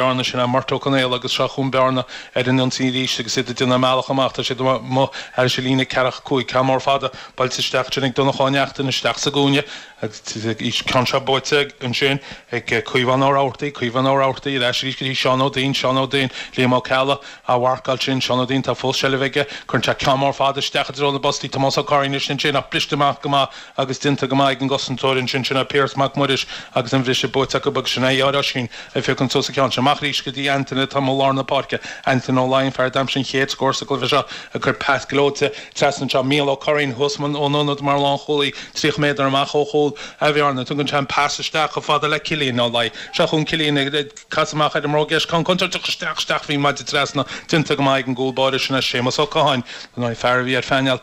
bearna sin ar Murt Ó Conaola agus seo chugainn Bearna ar an ionsaí arís agus iad ag déanamh a mbealach amach, tá siad amuigh thar an líne ceathracha cúig, ceann mór fada buailte isteach ansin ag Donnchadh Ó Neachtain, isteach sa gcúinne agus ceann seo buaite ansin ag Caomhán Ó Rabhartaigh, Caomhán Ó Rabhartaigh ar ais arís go dtí Seán Ó Duinn, Seán Ó Duinn, Liam Ó Ceallaigh á mharcáil sin, Seán Ó Duinn, tá fós seilbh aige, cuireann sé ceann mór fada isteach i dtreo na bpostaí, Tomás Ó Curraoin ansin ach briste amach go maith agus déanta go maith ag an gcosantóir ansin, sin é Piaras Mac Muiris agus an briseadh buaite acu agus sin é ár Oisín ag féachaint suas a cheann. Sea, amach arís go dtí Antaine atá amuigh i lár na páirce, Antaine Ó Laighin, fear a d'aimsigh an chéad scór sa gcluiche seo ag cur pas gleoite trasna anseo, Mícheál Ó Curraoin thuas ón ionad mar lánchúlaí, 30 méadar amach ó chúl Bhearna, tugann sé an pas isteach chomh fada le Cillian Ó Laighin, seo chugainn Cillian ag casadh amach ar an mbróg dheis, ceann contúirteach isteach, isteach faoin maide trasna, déanta go maith ag an gcúl báire, sin é Séamus Ó Catháin, an fear a bhí ar phainéal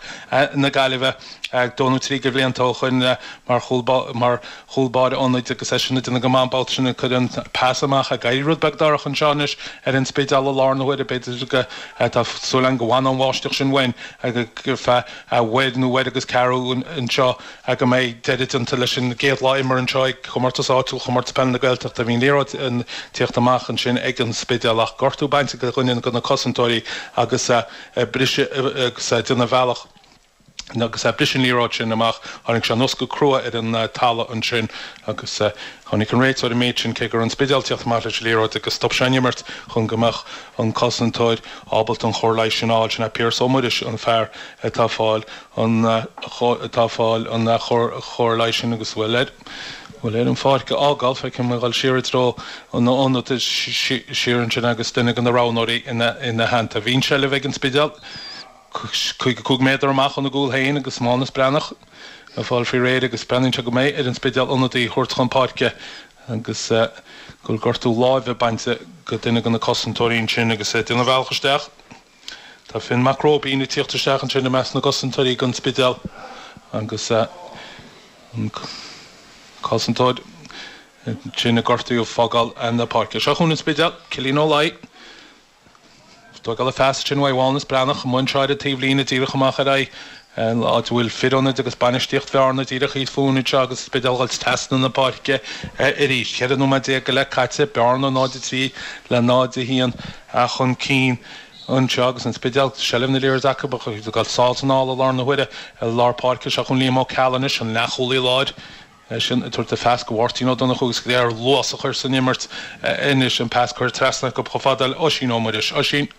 na Gaillimhe, dhó nó trí de bhlianta ó shoin, mar chúl báire ionaid agus eisean ag déanamh go maith an babhta sin, ag cur an pas amach, ag éirí rud beag dorcha anseo anois ar an Spidéal i láthair na huaire b'fhéidir, tá súil agam go bhfanfaidh an bháisteach sin uainn ar feadh uair nó uair agus ceathrú anseo go mbeidh deireadh déanta leis an gcéad lá imeartha anseo ag comórtas áitiúil Chomórtas Peile na Gaeltachta. Bhí an liathróid ag tíocht amach ansin ag an Spidéal ach gortú bainte do dhuine de na cosantóirí agus briseadh agus é ag déanamh a bhealach Agus a bhris an liathróid sin amach, tháinig sé anuas go crua ar an talamh ansin agus chonaic an réiteoir an méid sin, cé go raibh an Spidéal ag tíocht amach leis an liathróid agus stop sé an imirt chun go mbeadh an cosantóir ábalta an chóir leighis sin a fháil. Sin é Piaras Ó Muiris, an fear atá ag fáil, atá ag fáil an chóir leighis sin agus a bhfuil air an pháirc a fhágáil. Feicim é ag dul siar i dtreo an ionad siar ansin agus duine de na roghnóirí ina theannta. Bhí an tseilbh ag an Spidéal. Caoga cúig méadar amach óna gcúl féin agus Mánus Breathnach ag fáil faoi réir agus breathnaíonn sé go mbeidh ar an Spidéal ionadaí a thabhairt chun páirce agus go bhfuil gortú láimhe bainte do dhuine de na cosantóirí ansin agus é ag déanamh a bhealach isteach. Tá Finn Mac Róibín ag tíocht isteach ansin i measc na gcosantóirí ag an Spidéal agus an cosantóir sin a gortaíodh ag fágáil na páirce. Seo chugainn an Spidéal, Cillian Ó Laighin. ag tógáil an phas sin uaidh Mhánus Breathnach amuigh i dtreo na taobhlíne díreach amach ar aghaidh an áit a bhfuil fir ionaid agus bainistíocht Bhearna díreach thíos fúinn anseo agus an Spidéal ag goil trasna na páirce arís. 14 nóiméad go leith caite, Bearna 0-3 le 0-1 chun cinn anseo agus an Spidéal, seilbh na liathróide acu, ach ag dul sall is anall i láthair na huaire. I lár páirce, seo chugainn Liam Ó Ceallaigh anois, an leathchúlaí láir. é sin ag tabhairt a phas go Mháirtín Ó Donnchú agus ag iarraidh luas a chur san imirt anois, an pas curtha trasna acu chomh fada le Oisín Ó Muiris, Oisín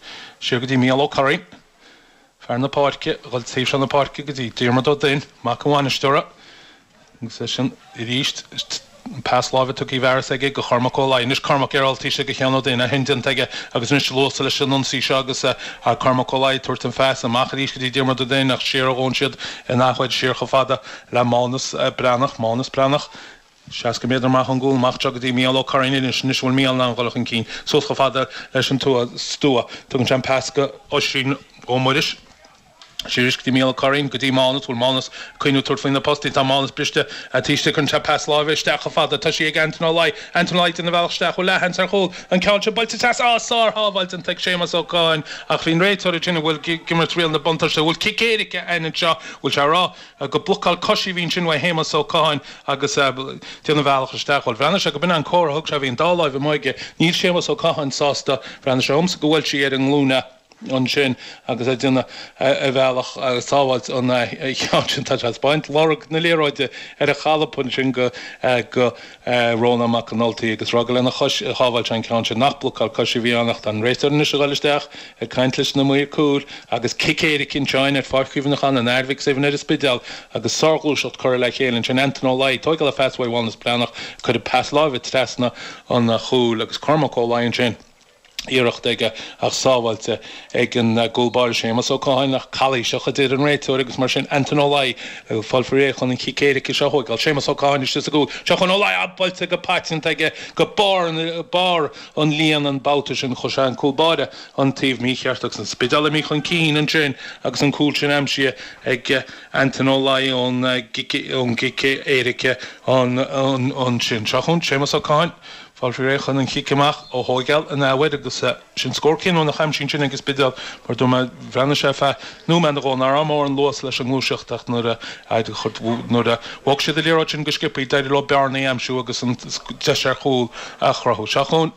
siar go dtí Mícheál Ó Curraoin, i lár na páirce, a ghoil taobh seo na páirce go dtí Diarmaid Ó Duinn, mac an bhainisteora, agus é sin arís an pas láimhe tugtha i bhfearas aige go Chormac Ó Laoi, anois Cormac ar fháiltigh sé go Sheán Ó Duinn, é sin déanta aige agus anois luas leis an ionsaí seo agus Cormac Ó Laoi ag tabhairt an phas amach arís go dtí Diarmaid Ó Duinn ach siar a ghabhann siad in athuair, siar chomh fada le Mánas Breathnach, Mánas Breathnach, seasca méadar amach ón gcúl, amach anseo go dtí Mícheál Ó Curraoin anois, anois a bhfuil Mícheál in ann dhul chun cinn, suas chomh fada leis an tua, stua. Tugann sé an pas go. Oisín Ó Muiris, siar aríst go dtí Mícheál Ó Curraoin, go dtí Mánas, bhfuil Mánas ag cuimhniú tabhairt faoina post, tá Mánas briste ar an taobh istigh, tugann sé pas láimhe isteach chomh fada, tá sí ag Antaine Ó Laoi, Antaine Ó Laoi, déanamh a bhealach isteach, bhfuil leathsheans ar chúl, an ceann seo buailte trasna, á, sár-shábháil déanta ag Séamas Ó Catháin, ach bhí an réiteoir ag déanamh, bhuel, ag imirt riail na buntáiste, bhuel, cic éirice againn anseo, bhfuil sé a rá, Go blocáil coise a bhí ansin uaidh Shéamas Ó Catháin agus eh. déanamh a bhealach isteach. Bhuel, bhreathnaigh sé go b'in é an comhartha a thug sé, bhí an dá láimh amuigh aige. Níl Séamas Ó Catháin sásta, bhreathnaigh sé dhomsa go bhuail sí ar an nglúin é ansin agus ag déanamh a bhealach agus sábháilt an eh. cheann sin tá sé ag spáint, lorg na liathróide ar a cholpa ansin go eh. go. eh, Rónán Mac an Ultaigh agus a rá gur lena chois, a shábháil sé an ceann sin. Nach blocáil coise a bhí ann ach tá an réiteoir anois a ghoil isteach ag caint leis na maoir cúil agus cic éirice cinnte ann ar Pháirc Chuimhneacháin an Athar Mhic Suibhne ar an Spidéal agus sárghluaiseacht curtha le chéile ansin, Antaine Ó Laoi, tóigeáil an phas uaidh Mhánas Breathnach, cuireadh pas láimhe trasna an chúil agus Cormac Ó Laoi ansin. iarracht aige ach sábháilte ag an gcúl báire Séamas Ó Catháin ach calaois a deir an réiteoir agus mar sin Antaine Ó Laoi ag fáil faoi réir chun an chic éirice seo a thóigeáil. Séamas Ó Catháin istigh sa gcúl. Seo chugainn Ó Laoi buailte go paiteanta aige go barr an líon an babhta sin chuir sé an cúl báire an taobh mícheart agus an Spidéal imithe chun cinn ansin agus an cúl sin aimsithe ag Antaine Ó Laoi ón gcic éirice ansin. Seo chugainn Séamas Ó Catháin. Fáil faoi réir chun an chic amach a thóigeáil in athuair agus sin scór cinniúnach aimsithe ansin ag an Spidéal mar dúirt mé, bhreathnaigh sé ar feadh nóiméad nó dhó, nach raibh mórán luas leis an ngluaiseacht ach nuair a bhog siad an liathróid sin go sciopthaí d'éirigh leo bearnaí a aimsiú agus an deis ar chúl a chruthú. Seo chugainn.